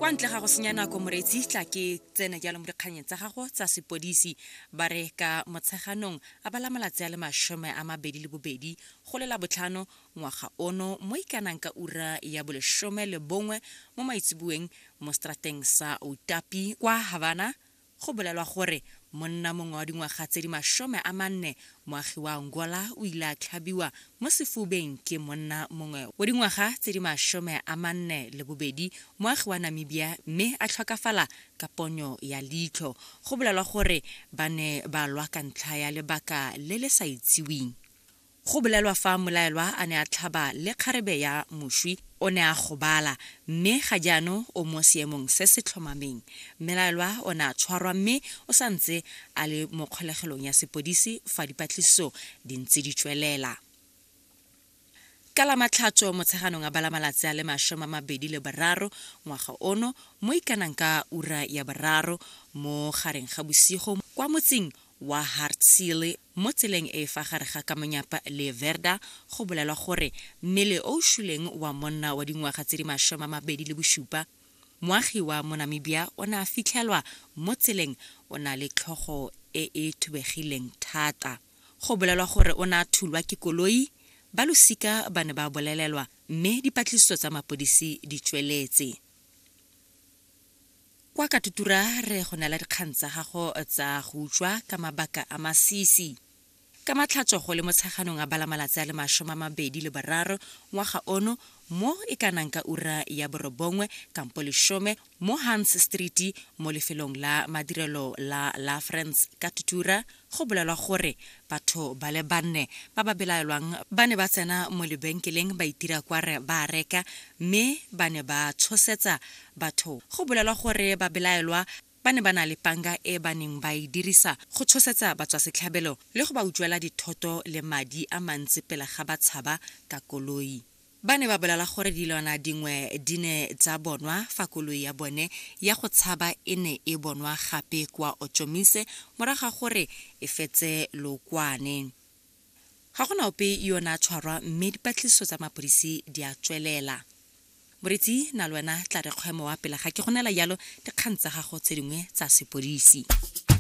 kwa ntle ga go senya nako moreetsi tla ke tsene jalo mo dikganyeng tsa gago tsa sepodisi ba re ka motsheganong a bala malatsi a le masome a mabedi le bobedi go lela botlhano ngwaga ono mo ikanang ka ura ya bolesome le bongwe mo maitseboeng mo strateng sa otapi kwa havana Go bolelwa gore monna mongwe wa dingwaga tse di masome a manne moagi wa Angola o ile a tlhabiwa mo sefubeng ke monna mongwe wa dingwaga tse di masome a manne le bobedi moagi wa Namibia mme a tlhokafala ka ponyo ya leitlho. Go bolelwa gore ba ne ba lwa ka ntlha ya lebaka le le sa itseweng. Go bolelwa fa mmolaelwa a ne a tlhaba le kgarebe ya moswi, o ne a gobala, mme ga jaanong o mo seemong se se tlhomameng. Mmelaelwa o ne a tshwarwa mme o sa ntse a le mo kgolegelong ya sepodisi fa dipatlisiso di ntse di tswelela. Ka Lamatlhatso Motsheganong a bala malatsi a le masome a mabedi le boraro ngwaga ono, mo ikanang ka ura ya boraro mo gareng ga bosigo kwa motsing wa Hartsile, Mo tseleng e e fa gare ga Kamonyapa le Verda go bolelwa gore mmele o o shuleng wa monna wa dingwaga tse di masome a mabedi le bosupa moagi wa mo Namibia o ne a fitlhelwa mo tseleng o na le tlhogo e e thubegileng thata. Go bolelwa gore o ne a thulwa ke koloi, ba losika ba ne ba bolelelwa mme dipatlisiso tsa mapodisi di tsweletse. Kwa Katutura re go neela dikgang tsa gago tsa go utswa ka mabaka a masisi. Ka Matlhatso go le Motsheganong a bala malatsi a le masome a mabedi le boraro ngwaga ono mo e ka nang ka ura ya borobongwe kampo lesome mo Hans Street mo lefelong la madirelo la Lafrance Katutura Go bolelwa gore batho ba le banne ba ba belaelwang ba ne ba tsena mo lebenkeleng ba itira kware ba a reka mme ba ne ba tshosetsa batho. Go bolelwa gore babelaelwa ba ne ba na le panga e ba neng ba e dirisa go tshosetsa batswasetlhabelo le go ba utswela dithoto le madi a mantsi pele ga ba tshaba ka koloi. Ba ne ba bolala gore dilwana dingwe di ne tsa bonwa fa koloi ya bone ya go tshaba e ne e bonwa gape kwa Otjomise morago ga gore e fetse lookwane. Ga go na ope yo o ne a tshwarwa mme dipatlisiso tsa mapodisi di a tswelela. Moretsi na le wena tla re kgwemo wa pele ga ke go neela jalo dikgang tsa gago tse dingwe tsa sepodisi.